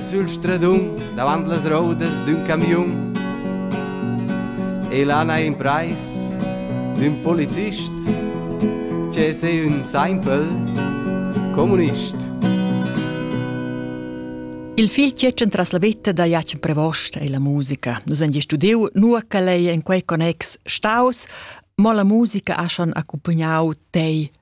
Sül stradun davant las roudas d'ün camiun e là n'ha imprais d'ün polizist che es ün saimpel comunist. Il fil tschetschen tras la vetta da Jacen Prevost e la musica. Nus han studiu nua che ei en quei connex staus, mo la musica ha schon accumpagnau tei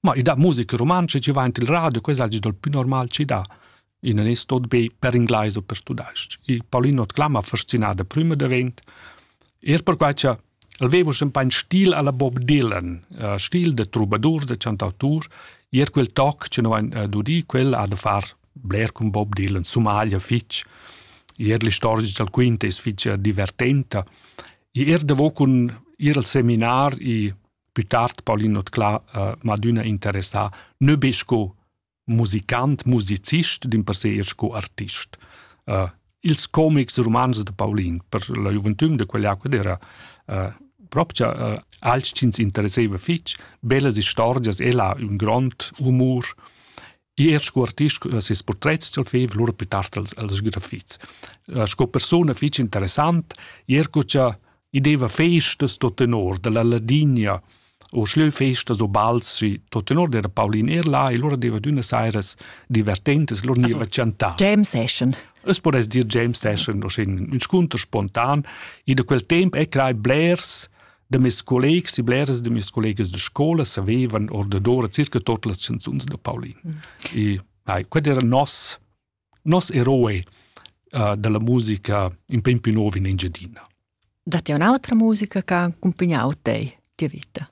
Ma i da musica rumantscha ci va in il radio, questa è il più normal ci da. In è tot be per inglais o per tudais. I Paulino Clama fascinada prima davent. Er per quai che aveva sempre un stil alla Bob Dylan, uh, stil de troubadour, de chantautur, er quel toc che noi uh, dudi, quel ha da far bler con Bob Dylan, Somalia fitch. Er l'istorgia del quinto è fitch divertenta. I er devo con ir al seminar i Più tard Paulin Notclà uh, m'ha adüna interessà nö be sco musicant, musicist, dimpersè eir sco artist. Uh, ils comics e romans de Paulin per la gioventüm de quell'acqua era uh, propria uh, alch chi ins interesseva fich, bellas istorgias, ella un grond humor er sco artist sco ses portrets ch'el feva lura pli tard als, als grafits. Uh, sco persona fitg interessant, er co cha i deva festas tot tenor, dalla Ladinia, o schleu festas o bals, si tot tenor era Paulin er là e lura deva d'una sairas divertentes, lura niva chantar. James Session. Es podess dir James Session, un scunter spontan, e da quel temp è crai blers da mes collegs e bleras de mes collegas de scola savevan ordadora circa tot las canzuns de Paulin. Mm. E ai, qued era nos nos eroe uh, della musica in pem più nuovo in Engiadina. Datti un'altra musica che ha accompagnato te, tua vita?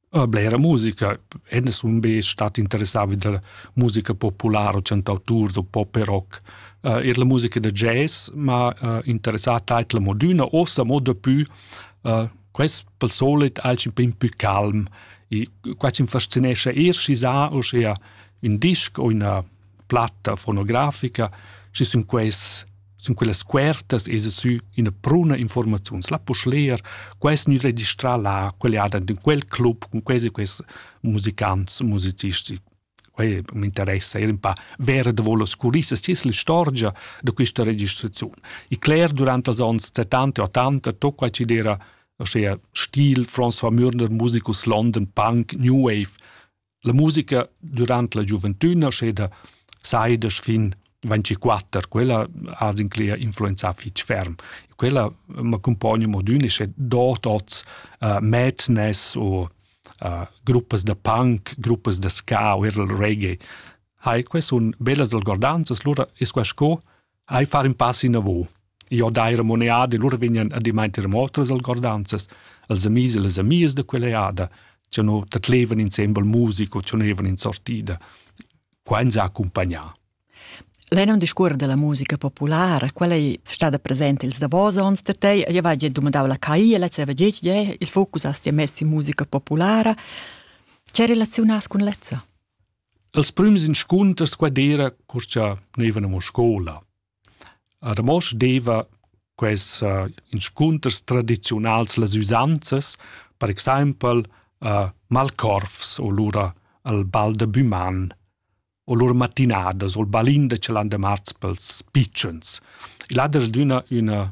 Uh, blera musica, enne sun be stat interessati della musica popolare o cantautur o pop e rock. Uh, er la musica da jazz, ma uh, interessata a la moduna, ossa mo dapù Uh, quest pel solit alch pin pü calm e qua ci fascinescha eir schi sa uschea ün disc o üna platta fonografica, schi sun quels sun quellas cuertas e sü üna pruna informaziuns. La poss leer, quest gnü registrà là, quel e ad in quel club cun questi quest musicants e musicisti. Quei m'interessa era un pa ver davò las culissas, chi es l'istorgia da quista registraziun. I cler durant els ons 70 e 80 tot quai chi'd era uschea stil François Mürner, musicus London, punk, new wave. La musica durant la giuventüna, uschè da saidas fin 24, quella ha inclea influenzà fitg ferm. Quella m'accompagna modun e sche dort oz uh, madness o uh, gruppas da punk, gruppas da ska o er il reggae, hai quai sun bellas algordanzas, lura es quai sco hai far in pass in avo. Io dai remoneade, lura vegnan a dimainter motos algordanzas, els amis e les amies da quell'eada, che no tat levan insembel musico, che no evan in sortida. Qua ens ha accumpagnà. Lei non discuor della musica populara, quella è stada presente ils davos onns da te, io va già domandau la CAI e lei aveva detto che il focus a stia messi in musica populara. Che relazionas con lezza? Els prüms inscunters qua d'era, cur cha neivan amo scola. A Ramosch deva quels inscunters tradiziunals las üsanzas, per exaimpel malcorvs o lura il bal da büman o lur matinadas o il balin da chalandamarz pels pitschens. Il ha dasdüna üna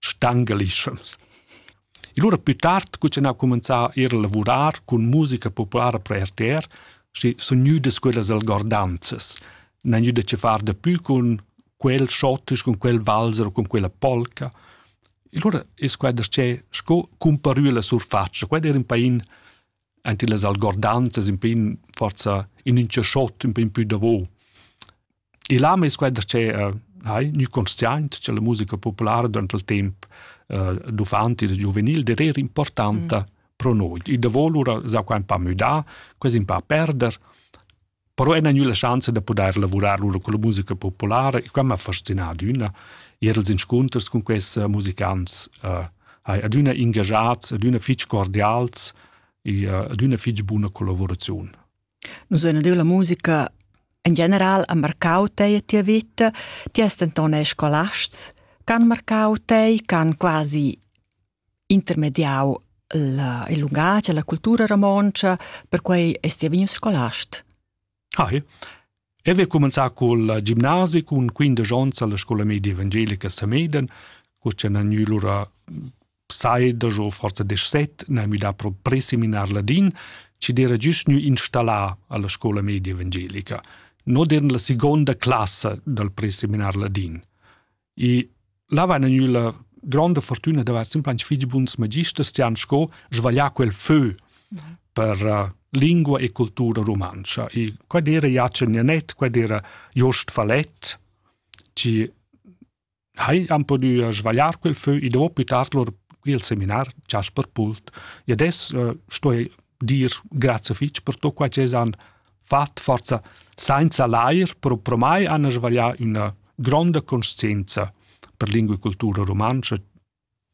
stangalischans. E lura plü tard cuczinau cumenzà eir a lavurar cun musica populara per RTR, schi sun gnüdas quellas algordanzas. N'han gnüda che far dapü cun quel schottisch, cun quel valzer o cun quella polca. E lura es quai darcheu sco cumparü la surfatscha. Quai d'eir ün pain ante las algordanzas, ün pain forsa in ün chachot, ün pain pü davo. E là meis quai da tschera hai gnü consciaint cha la musica populara durant il temp uh, d'uffanti e da giuvenil der eir importanta mm. pro noi. I davo lura s'ha quai ün pa müdà, quasi ün pa perder, però ena gnü la schanza da pudair lavurar lura con la musica populara e quai m'ha fascinà adüna. Ir als inscunters cun quests uh, musicants uh, hai adüna ingagiats, adüna fich cordials e uh, adüna fich buna collaboraziun. Nus ein adüna la musica in general ha marcau tei e tia vita, ti hast denton eir scolasts ch'han marcau tei, ch'han quasi intermediau il il lungatg e la cultura romontscha, perquei est ti vegnius scolast. Hai. E vi cumenzà col gimnasi cun 15 ons alla scola media evangelica Sameden, cu c'è nagnu lura saida o forza 17, na mi da pro preseminar ladin, ci dera giust nu installà alla scola media evangelica, no dern la seconda classa dal preseminar ladin. E là va gnü la gronda fortüna da vair simplans fich buns magisters chi han sco svaglià quel fö per uh, lingua e cultura rumantscha. E quai era Jacen Janet, quai era Jost Falett, chi hai han pudü uh, svagliar quel fö e dopo tard lor qui al seminar Jasper Pult. E adesso uh, sto dir grazie fich per tot quai che han fat forza sainza l'air propramai han svaglià üna gronda conscienza per lingua e cultura rumantscha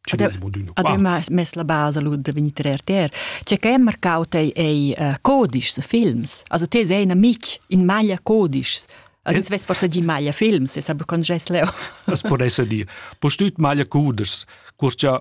Cinismo d'uno qua. Ademma mess la basa lu da vegnir tre RTR. C'è che è marcau tei ei uh, codices films. Also te sei in amic in maglia codices. Ins vess forse gi maglia films, e sa con gest leo. Das può essere dir. Postüt maglia cuders, curcia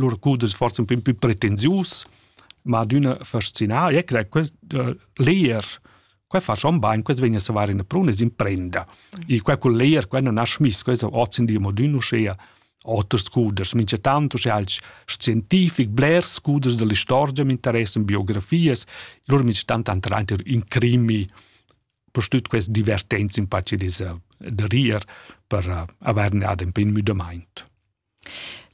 lur curs es forsa ün pö pretensius, ma adüna fascinà, e che quest uh, leer qua fa schon bain, quest vegna a var in prun e s'imprenda. E qua col leer qua non ha schmiss, questo ozin di modün uschea oters cuders, mincha tanto sche als scientific blers cuders dell'istorgia m'interessan, biografias, lur mi stan tanto reiter in crimi, postüt quest divertenz in pace des, de rier per uh, averne ad un pin müdamaint.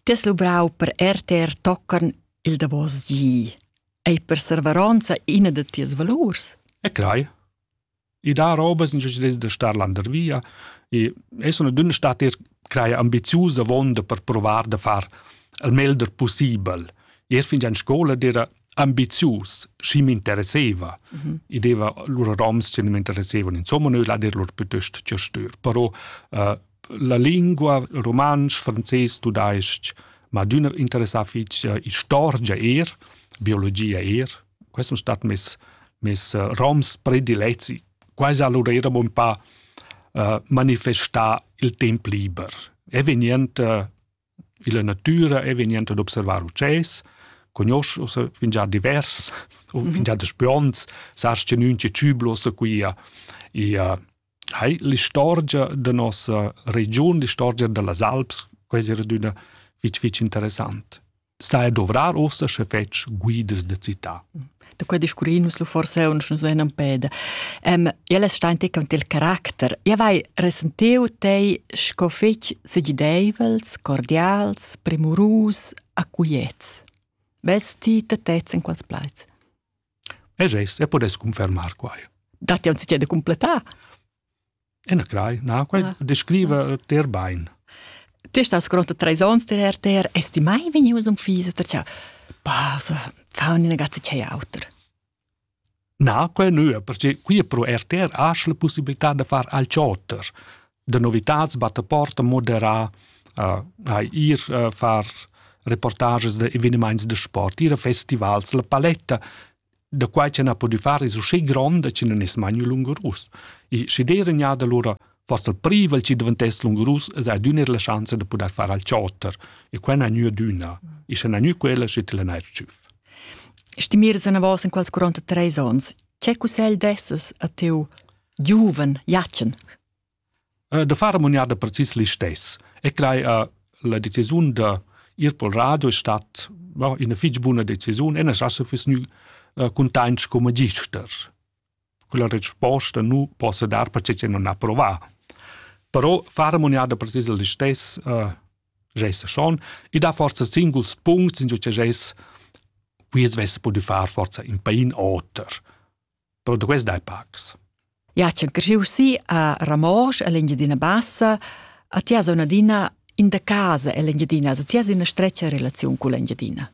Ti has luvrau per rtr tocan il davos gi. Ei perserveronza ina da tias valurs? E crai. I dà robas in gest da star landervia e es una dünna stater craja ambiziusa vonda per provar da far il meglder possibel. Ir fin già in scola era ambizius, schi m'interesseva. Mm -hmm. I deva lura roms che mi interessevano, insomma, noi lader lur piuttosto che stür. Però uh, la lingua rumantsch, frances, tudais-ch, ma adüna interessà fich eh, istorgia eir, biologia eir. Quai sun stat mes, mes eh, roms predilezi. Quai alura eira bun pa uh, manifestà il temp liber. E vegnend uh, Illa natüra e vegniand ad observar utschès, cugnosch ussa fingià divers o fingià daspü ons, sast cha nün che tschübla uossa quia ia hai l'istorgia da nossa regiun, l'istorgia da las Alps, quai es adüna fich fich interessant. Stai a dovrar uossa sche fetsch guidas da cità. da quei discurrir nus lu forse uns nus venan peda. Ähm, ja les stein te con il caracter. Ja vai resentiu tei sco fetg segideivels, cordials, premurus, acuiets. Vesti te tez in quals plaiz? E gest, e podes confermar quai. Dat ja uns de completar. Enaclai, na, quai ah. descriva ter bain. Testas grota treis ons ter er ter estimai vegnius um fisa ter ciao. Bah, so, fa una ragazza c'è auter. Na, quai nu, perché qui pro er ter asch la possibilità de far al cioter. De novitats batte porta modera, uh, hai ir uh, far reportages de evenements de sport, ir a festivals, la paletta, da quai ch'en ha pudü far es usché gronda chi nun es mai gnü lungurus. E schi d'eira gnada lura fast il privel chi daventess lungurus es adüna eir la schanza da pudair far al chotter e quai n'ha gnü adüna. E sche n'ha gnü quella, schi til n'ha tschüff. Stimiras anavos in quels 43 ons, che cussegl dessas a teu giuven Jatschen? da far amoniada precis listess e crei a la decisiun da ir pel radio è stat no, ina fich buna decisiun e nas asa füss gnü cuntaint sco magister. Quella resposta nu possa dar perche che non ha provà. Però far amoniada precis listess uh, gesa schon e dà forza singuls puncts in giò che ges quiz vess pudü far forza in pain oter. però duess dai pacs. Ja, c'è cresciu sì a Ramosch, all'Engiadina Bassa, a tia zona dina in da casa all'Engiadina, also tia in una streccia relazione con l'Engiadina.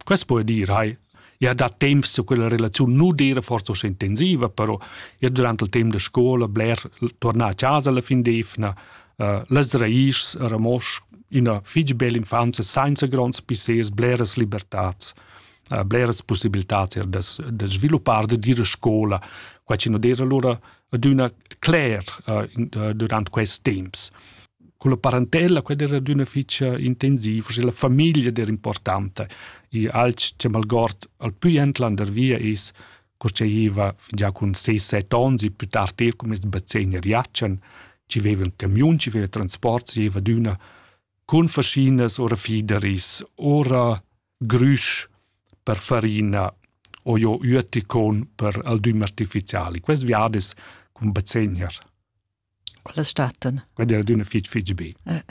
Questo può dire, hai, ja da tempo su quella relazione non dire forse so intensiva, però ja durante il tempo de scuola bler tornare a casa la fin d'evna, uh, las raiz a Ramosch, una fitg bella infanzia senza grands pissers, bleras libertats. bleras possibilitad er da, da sviluppar da dire scola qua ci non dire allora aduna cler uh, durant quest temps con la parentella quella era d'una ficia intensiva se la famiglia era importante e alch che malgord al più entlander via is cosceiva già con 6-7 onzi più tardi er come bazzegna riacen ci aveva un camion ci aveva transport ci aveva d'una con fascinas ora fideris ora grüsch per farina o jo üeticon per aldüm artificiali. Quest viad es cun bezegner. Quellas stattan. Quella è d'una fitg fitg be. Eh.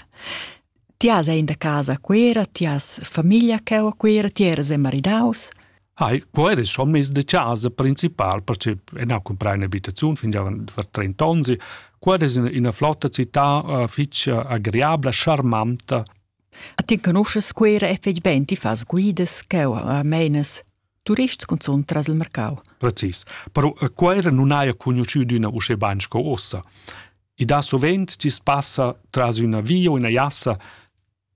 Ti has in da casa quera, ti has famiglia che o quera, ti eres maridaus. Hai, quo eres schon mes de casa principal, perché en ha comprai un'abitazione fin già per 30 anni. Quo eres in una flotta città uh, fitch agreabla, charmanta, Ti conoschas Cuera e fetg bein, ti fas guidas cheu a meinas turists cunzun tras il marcau. Precis. Però a Cuera non haja cugnuschü d'üna uschè bain sco uossa. I dà sovent chi's passa tras üna via o üna jassa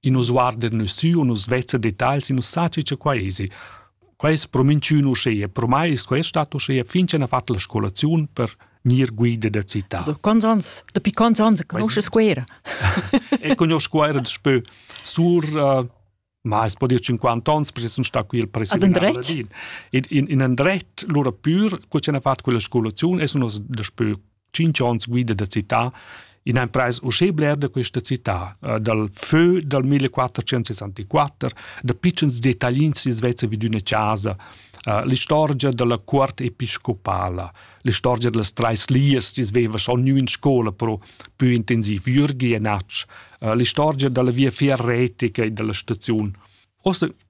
in nos guarder nus sü o nus vezza detagls e nus saci cha quai esi. Quei es pro minchün uschea, pro mai es quest stat uschea fin cha n'ha fat la scolaziun per gnir guida da città. Also, quants ans, dapi quants ans conosces Scuera? e conosco Scuera daspö sur uh, ma es po dir 50 ans, perché sun sta qui il presidente in, in, in andret, lura pür, cu ce n'ha fat quella scolaziun, e sun os daspö tschinch ons guida da città in ein preis uschè bler da questa città uh, dal fö dal 1464 da pitschens dettaglins si Svezia vid üna casa uh, l'istorgia dalla cuort episcopala l'istorgia dallas trais lias si sveva schon nu in scola pro più intensiv Jürgi e Natsch uh, l'istorgia dalla via ferretica e dalla staziun Ossa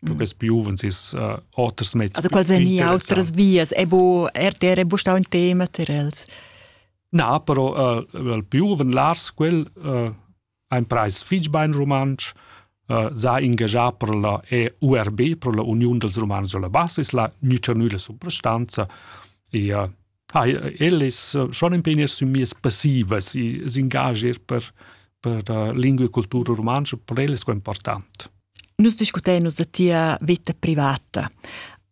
Lucas più giuvens is uh, oters mezs. Also quals èn autras vias? È bo RTR è bo stau in tema per els? Na, però uh, il giuven Lars quel uh, ha ein preis fitg bein rumantsch, uh, sa ingagià per la EURB, per la Union dels Romans sulla Basis, la Nücernüle Subrestanza e uh, Hai, ellis schon impegni sün mias passivas, i s'ingagier per per la lingua e cultura rumantscha per ellas qua important. Nus discutein nus da tia vita privata.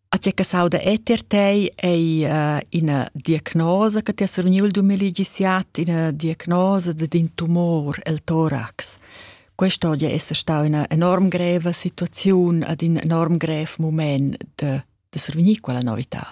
A tgè che sauda eter tei ei uh, ina diagnosa che ti has reuniu il 2017, ina diagnosa d'in tumor, il torax. Questa oggi è stata una enorm greva situazione ad un enorm grev moment de, de survenir quella novità.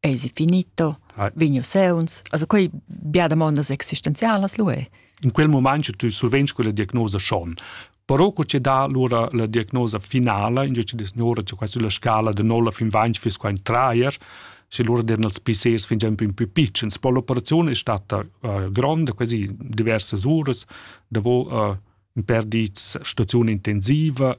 eisi finito, ah. vigno seuns, also quei bia demondas existenzialas lu è. In quel momento tu survegni quella diagnosa schon. Però co ci dà allora la diagnosa finala, in dice signora, c'è quasi la scala de 9 fin 20 fis qua in traer, se loro derano els PCs fin già più più piccins. Poi l'operazione è stata uh, grande, quasi diverse ore, dove uh, in per di stazione intensiva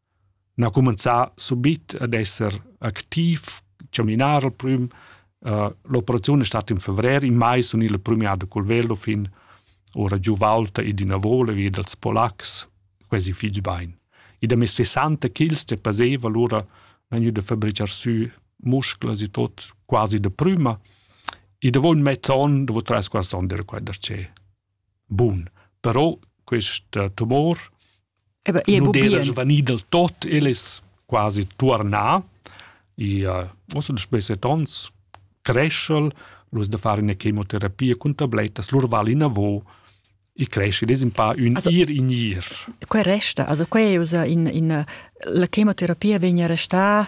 n'ha cumenzà subit ad esser activ, chaminar al prüm. Uh, l'operaziun è stata in fevrer, in mai sun il premiato col velo fin ora giù Walter e d'ina vola via dals polacs, quasi fitg bain. E da mes 60 kg che paseva allora vegnu da fabricar sü musclas e tot quasi da prüma e da voul mezz'on, da voul trais quarts on dera quai da che. Bun, però questa tumor nu d'era svanì del tot, el es quasi tuornà. I uh, uossa da spesset ons creschel, lur da fare üna chemoterapia cun tablettas, lur val inavo, i cresce, des un pa ün also, ir in ir. Quai resta, also quai è usa in, in la chemoterapia vegna restà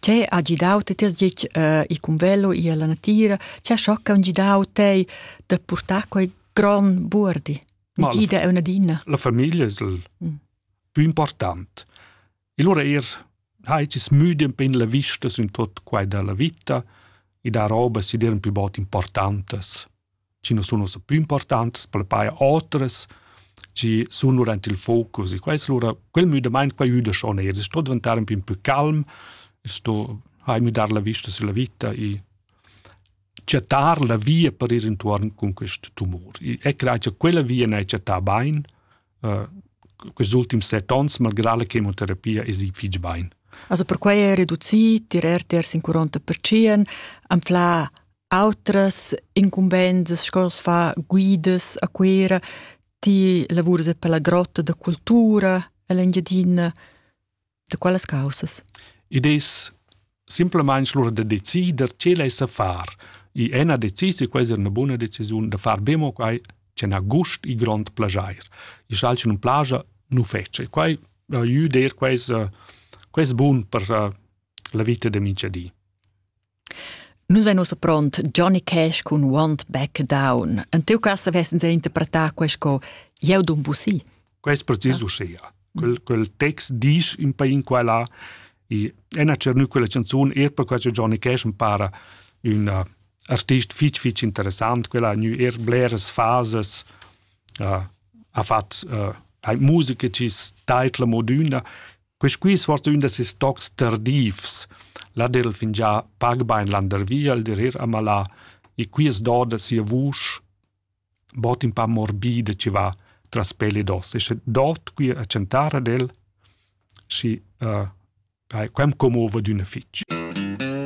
Che ha gidau ti tiers gitg uh, il cumvello e la natira? Che ha schocca un gidau tei da portar quei gran buordi? Mi gida è una dina. La famiglia è il mm. più importante. E allora er hai ci smüdi un pin la vista su in tot quai della vita e da roba si diran più bot importantes. chi non sun ussa pü importantas pel paja otras, chi sun lura ant il focus e quais lura quel müdamaint qua üda schon eir. Es sto diventar ün pin pü calm, es sto ha müdar la vista sulla vita e chattar la via per ir intuorn cun quest tumor. E crai cha quella via n'ha chattà bain, uh, questi ultimi set ons, malgrà la chemoterapia, es i fich bain. Also perquai è reducì, tirer tiers in 40%, anflà Autras incumbensas sco as fa guidas a Cuera, ti lavuras e per la grotta da cultura en l'Engiadina, da quelles causas? Id es simplamaing lura da decider che l'ais da far. I è na decis e questa è una buna decisiun da far be mo quai che n'ha gust e grond plajair. I schal che nun plaja nu fece. Quai aiuda eir quais, quais bun per la vita da minchadi. Nus vein ussa pront Johnny Cash cun Want Back Down. En tiu cass vessens interpretà quei sco Jeu dun busi. Quei è precis ah. uschia. Quel, quel text dice in pain quella e ena cernu quella canzun er per quella Johnny Cash mi para un uh, artist fitch fitch interessant, quella ha er bleres fases, uh, ha fat uh, musica cis taitla moduna Quisqui svart ün da ses tocs tardivs. La der il fingià pag bain landervi al der ir a malà e qui es doda sia vusch bod ün pa morbida chi va tras pel ed os. E sche dot qui a chantar ad el, schi uh, quem commova d'üna fich.